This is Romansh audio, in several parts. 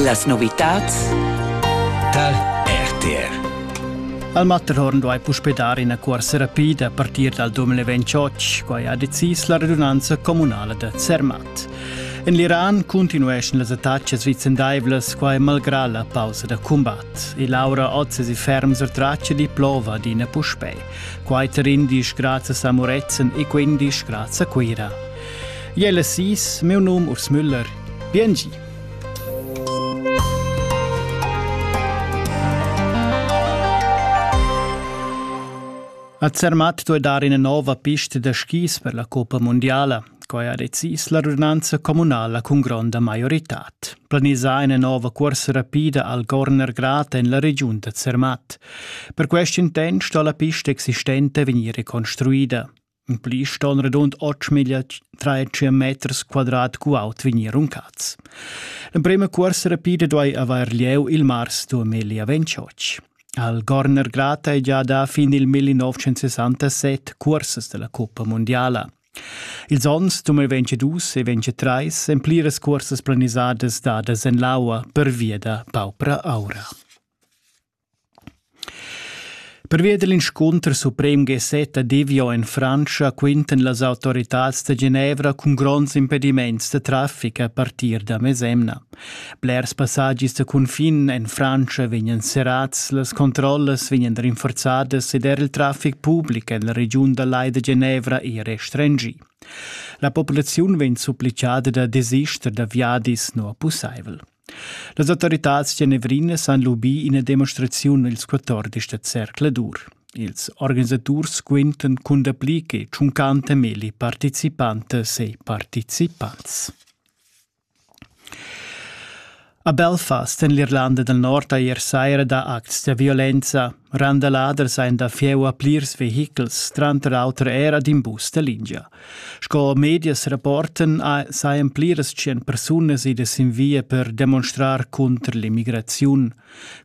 Las novitads tal RTR Al Matterhorn duai puspè dar ina cuorsa rapida a partir dal 2028, quai ha decis la radunanza communala da Zermatt. En l'Iran cuntinueschan las attacas vicendaivlas, quai malgrà la pausa da cumbat. E Laura Oz è ferm sur traccia di plova adina puspè. Quai tar indisch grads a Samuretzen e quindisch grads a Cuira. Jella sis, meu num Urs Müller. Biengi. A Zermatt duei dar ina nova pista da skis per la Coppa Mondiala. Quai ha decis la radunanza communala cun gronda maioritad. Planisà ina nova corsa rapida al Gorner Grat en la regiun da Zermatt. Per quest intent sto la pista existente vegnir reconstruida. In pli ston radund 8 miglia 3 meters quadrat cu aut vegnir runcats. L'emprema cuorsa rapida duai avair lieu il mars 2028. Al Gorner Grata è già da fin il 1967 cursas della Coppa Mondiala. Ils onns 2022 e 2023 èn pliras cursas planisadas dadas en l'aua pervia da paupra aura. Pervia dell inscunter suprem Gessetta Divio en Frantscha quintan las autoritads da Genevra cun gronds impediments da traffic a partir da mesemna. Blers passagis da cunfin en Frantscha vegnan serrats, las controllas vegnan rinforzadas ed er il traffic public en la regiun da Lai da Genevra è restringì. La populaziun vegn supplicada da desister da viadis nu pussaivel. Las autoritads genevrinas han lubì ina demonstraziun ils 14 da zercladur. Ils organisaturs quintan cun dapli che 50.000 participantas e participants. A Belfast en l'Irlanda del Nord ha ier saira dà acts da violenza. Randalader sein da fieu a plirs vehichels, tranter auter era d'in bus da lingia. Sco medias rapporten saien pliras tschien persunas idas in via per demonstrar contr l'immigraziun.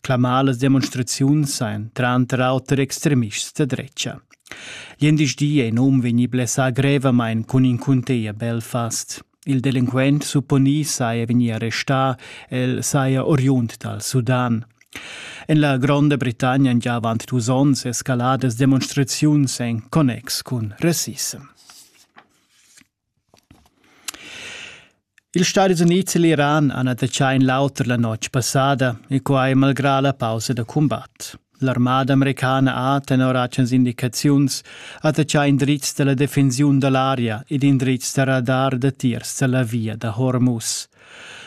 Clamalas demonstraziuns saien tranter auter extremists da drecha. Gl'endisch di ei num vegni blessà grevamain cun in cunteia Belfast. Il delinquent supponì saja vegnì arrestà, el saja oriund dal Sudan. En la Gronda Britannia han gia avant dus onns escaladas demonstraziuns en connex cun rassissem. Ils Stati Unids e l'Iran han attaccà in l'auter la notg passada e quai malgrà la pausa da cumbat. L'armada americana ha tenor agens indicaziuns attachà indrizs da la defensiun da l'aria ed indrizs da radar datiers da la via da Hormuz.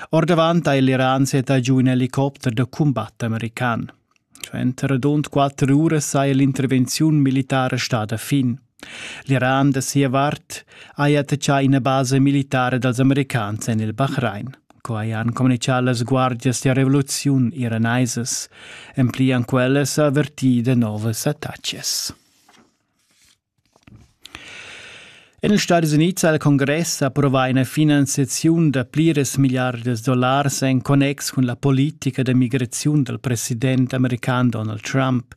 Ordavant ha l'Iran setà giu in helicopter da cumbat american. Cioè, entro rund quatter uras saja l'intervenziun militara stada fin. L'Iran da sia vart haja attachà ina basa militara dals americans en il Bahrain. Quai han communitgà las guardias da revoluziun iranaisas. En pli han quellas avvertì da novas attacas. En ils Stati Unids ha il Congress approvà ina finanziaziun da pliras milliardas dollars en connex cun la politica da migraziun dal president american Donald Trump.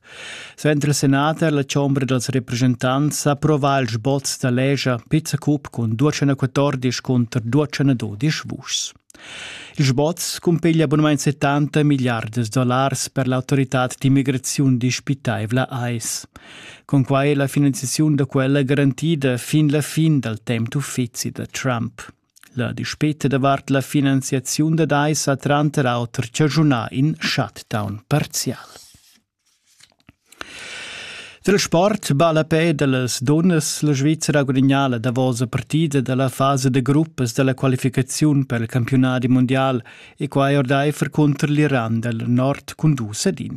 Suenter il senat ha la chombra dals representants approvà il sboz da legia pizza cup cun 214 cunter 212 vuschs. Il sboz cumpiglia abunament 70 miliardas dollars per l'autoritad d'immigraziun dispitaivla AIS. Con quai è la finanziaziun da quella garantida fin la fin dal temp d'uffizi da Trump. La dispeta davart la finanziaziun dad ais ha tranter auter chaschunà in shutdown parzial. Dal sport ballapè da las dunnas la Svizra ha gudagnà la davosa partida da la fasa da gruppas da la qualificaziun per il campiunadi mundial e quai ordaifer cunter l'Iran dal nord cun dus ad in.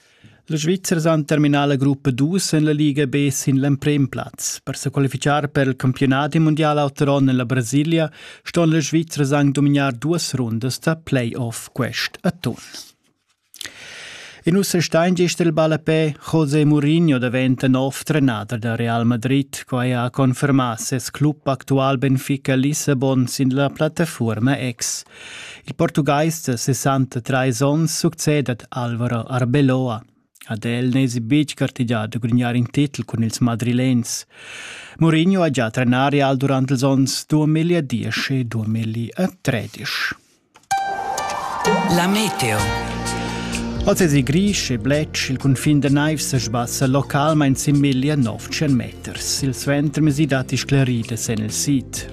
La Svizra ha terminà la gruppa 2 en la Liga B sin l'emprim plaz. Per se qualificar per il campionat mondial autoron en la Brasilia ston la Svizra anche dominar duas rundas da playoff quest atun. In usse stein gest il ballapè José Mourinho diventa nov trenader da Real Madrid, quai ha confermà ses club actual Benfica Lissabon sin la plattaforma X. Il portugais da 63 onns succedet Alvaro Arbeloa. Ad el n'esi betg gartegià da grugnar in titel cun ils madrilens. Mourinho ha già trenar Real durant ils onns 2010 e 2013. La meteo. Oz es grisch e blech, il cunfin da naivs se sbassa localmain sin 1900 meters. Il suentermesi datti scleride sen il sid.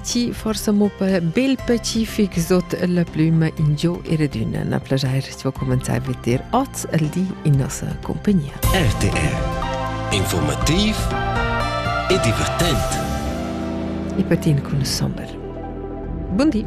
Ti forse mo per bel pacific sot la plüma in gio e redüna na plajair si va comenzar a veter oz al di in nossa compagnia. RTR Informativ e divertent. E patin cun sommer. Buondì.